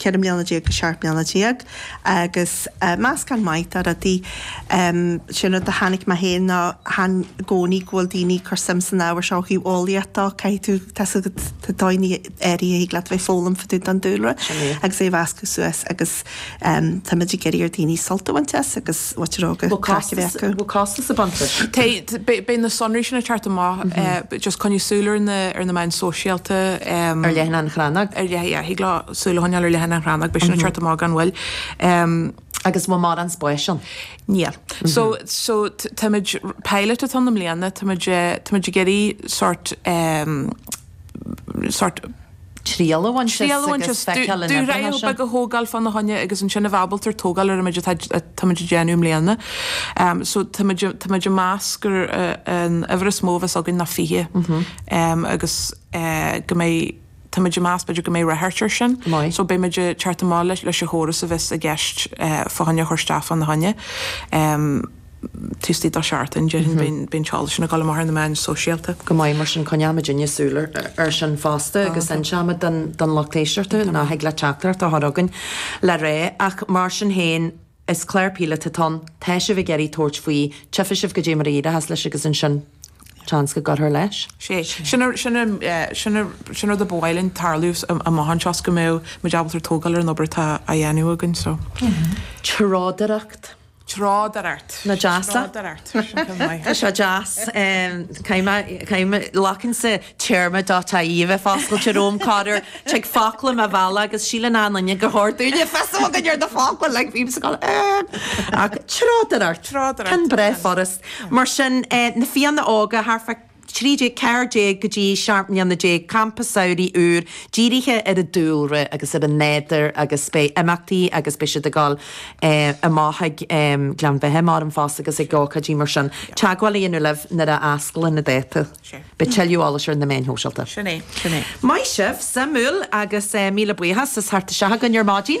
14 mbliana go 17 mbliana agus meascán maith de rudaí. Sé an rud a chonaic mé féin ná chan i gcónaí go bhfuil daoine ag cur suim san ábhar seo ó thaobh eolaíocht dó. Caithfidh tú, tá sa tá tá daoine áirithe a thig leat a bheith ag foghlaim fá dtaobh den dúlra agus é a mheascadh suas agus táimid ag iarraidh ar daoine sult a bhaint as agus Uachtaráca, Caitliceacha. Bhfuil costas ag baint leis? Tá, beidh na sonraí sin ag teacht amach, just coinnigh súil ar na, ar na meáin sóisialta, em, Ar leathanach an Chrannóg? ar leith, yeah, thig leo súil a choinneáil ar leathanach an Chrannóg, beidh sin ag teacht amach gan mhoill. Em, Agus bhfuil mórán spáis ann? Níl. So, so t- táimid, pilot atá ann i mbliana, táimid, eh, táimid ag iarraidh sort, em, sórt triail a bhaint as agus feiceáil an oibreoidh sé. Dúshraith bheag a thógáil fána choinne agus ansin a bheith ábalta tógáil ar an méid atá tá muid ag déanamh i mbliana. So tá muid tá muid ag meas gur an uimhir is mó a bheas againn ná 20 agus go mbeidh tá muid ag meas b'fhéidir go mbeidh ráchairt air sin. So beidh muid ag teacht amach leis leis an chóras a bheas i gceist fá choinne a chur isteach fána choinne. taobh istigh de sheachtain, déarfainn, beidh an t-eolas sin ag dul amach ar na meáin sóisialta. go maith, mar sin coinneoidh muidinne súil air sin fosta agus inseoimid don lucht éisteachta nó thig leat teachtaireacht a chur chugainn le rá ach mar sin féin is clár píolótach atá ann, tá sibh ag iarraidh tabhairt faoi, tchífidh sibh cad é mar a éireoidh leis agus ansin seans go gcuirfear leis. Sea, sin an rud a ba mhaith linn tarlú amach anseo is go mbeadh muid ábalta tógáil ar an obair atá á dhéanamh againn. Treodóireacht. Treodóireacht. Nach deas é? Tá sé deas. Glacann sé téarma dot ie a bheith foscailte romham, corruair. Tig focla i mo bhealach agus síleann achan duine gur chóir dúinn a bheith fios a bheith againn ar na focla, like bím sa gcodladh, eh. Ach treodóireacht. Treodóireacht. Tá sin breá furast. Mar sin, na Fianna Óga, thart fá. 13, 14 go dtí seacht mbliana déag campa samhraidh úr dírithe ar an dúlra agus ar an nádúr agus beidh imeachtaí agus beidh siad ag dul amach go Gleann Bheatha mBáram fosta agus ag ócáidí mar sin teagmháil a dhéanamh libh nuair a fhosclóidh na dátaí. Beidh tuilleadh eolais ar na meáin shóisialta. Sin é. Sin é. Maith sibh! Suimiúil agus míle buíochas. As teacht isteach chugainn ar maidin.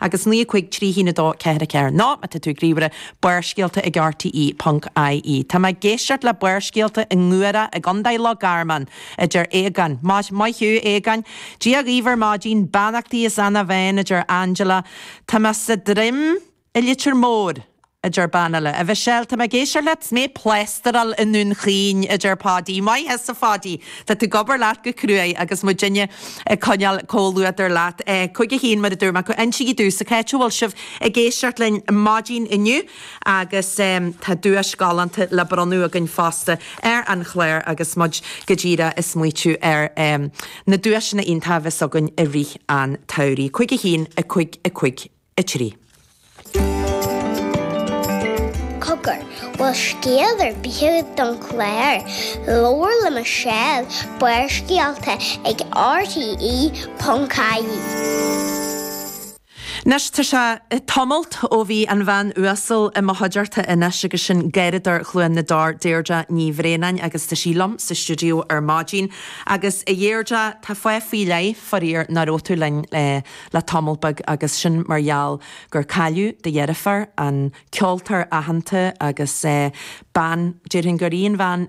agus 9 5 3 1 2 4 4 Nó, má tá tú ag ríomhaire, Barrscéalta ag RTÉ ponc IE. Tá mé ag éisteacht le Barrscéalta i nGuaire i gContae Loch Garman, a deir Aogán. Maith, maith thú, Aogáin. Dia dhaoibh ar maidin. Beannachtaí is ana-bheann, a deir Angela. Tá mé sa Droim i Leitir Móir. a deir bean eile. A Mhichelle, tá mé ag éisteacht leat, is mé ag plástráil i nDún Chaoin, a deir Páidí. Maith thusa, a Pháidí, tá tú ag obair leat go cruaidh agus muidinne ag coinneáil comhluadair leat. Cuig a haon, mar a dúirt mé, a cúig. Insígí domhsa cá háit a bhfuil sibh ag éisteacht linn maidin inniu agus tá duais galánta le bronnadh againn fosta ar an chlár agus muid go díreach ag smaoitiú ar na duaiseanna iontacha a bheas againn i rith an tsamhraidh. Cúig a haon, a cúig, a cúig. 3. Cogar, bhfuil scéal ar bith don chlár, Labhair le Michelle, Barrscéalta ag RTÉ ponc ie. Anois tá sé tamall ó bhí an bhean uasal atá i mo chuideachta anois againn, sin garraíodóir Chluain na dTor, Deirdre Ní Bhraonáin, agus tá sí liom sa stiúideo ar maidin agus a Dheirdre tá fáth faoi leith faraor nach raibh tú linn le le tamall beag agus sin mar gheall gur cailleadh do dheirfiúr, an ceoltóir aitheanta agus bean, déarfainn gur í an bhean,